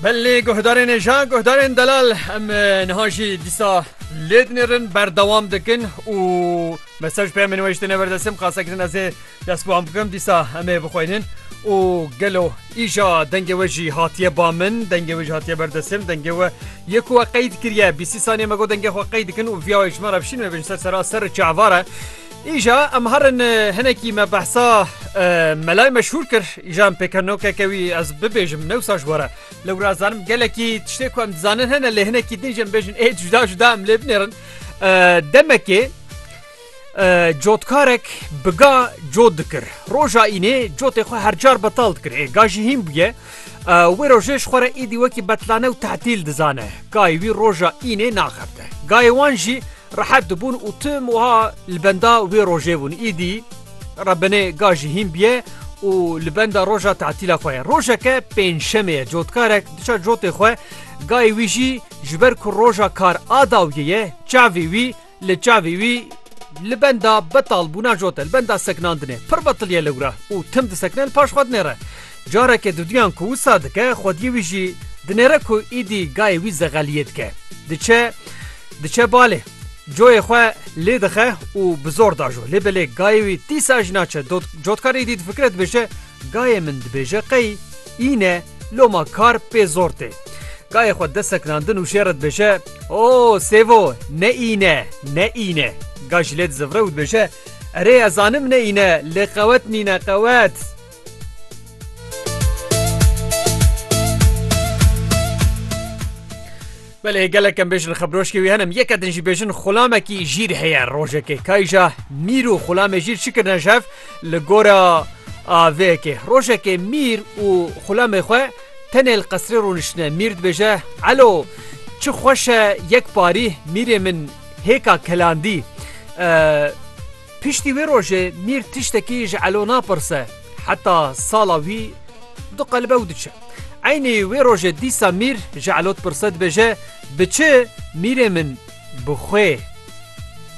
Belê guhdarên êja guhdarên delal em niha jî dîsa lê dinêrin berdewam dikin û mesaj peyamê niwêjtine berdesim qasekirin ez ê dest bi wan bikim dîsa em ê bixwînin û gelo îja dengê we jî hatiye ba min dengê we jî hatiye berdesim dengê we yê ku we qeyd kiriye bîsî saniye me got dengê xwe qeyd dikin û viya wê ji me re bişîn me bin ser sera ser çavare Îja em herin hinekî me behsa melay meşhûr kir îja em pêkenokeke wî ez bibêjim newsa ji were lew razanim gelekî tiştê ku em dizanin hene lê hinekî din jim bêjin ê cuda cuda em lê binêrin demekê cotkarek biga cot dikir roja înê cotê xwe hercar betal dikir ê gajî hîn bûye wê rojê ji xwere îdî wekî betlane û tehtîl dizane gayî wî roja înê naxebte gayê wan jî Rehet dibûn û tim wiha li benda wê rojê bûn. Îdî re binê ga jî hîn bûye û li benda roja tetîla xwe ye. Rojeke pêncşemê ye. Cotkarek diça cotê xwe gayê wî jî ji ber ku roja kar a dawiyê ye çavê wî li çavê wî li benda betalbûna cot e, li benda sekinandinê pir betilî ye li wir e û tim disekine li paş xwe dinêre. Careke duduyan ku wisa dike xwediyê wî jî dinêre ku îdî gayê wî zegeliyê dike. Diçe diçe balê. Coyê xwe lê dixe û bi zor dajo. Lê belê gayê wî dîsa jî naçe. Dot cotkar îdî difikire dibêje gayê min dibêje qey îne loma kar pê zor tê. Gayê xwe dest sekinandin û şêre dibêje O sêvo ne îne ne îne. Ga jî lê dizivire û dibêje Erê ez zanim ne îne lê qewet nîne qewet. Belê gelek em bêjin xebroşkê wî henim yek edin jî bêjin xulamekî jîr heye rojekê kayja mîr û xulamê jîr çikirne jev li gora avêkê rojekê mîr û xulamê xwe tenê li qesrê rûniştine mîr dibêje elo çi xweş e yek parî mîrê min hêka kelandî Piştî wê rojê Mîr tiştekî ji Elo napirse heta sala wî diqelbe û diçe. Eynî wê rojê dîsa Mîr ji Elo dipirse dibêje, Bi çi Mîrê min? Bi xwe.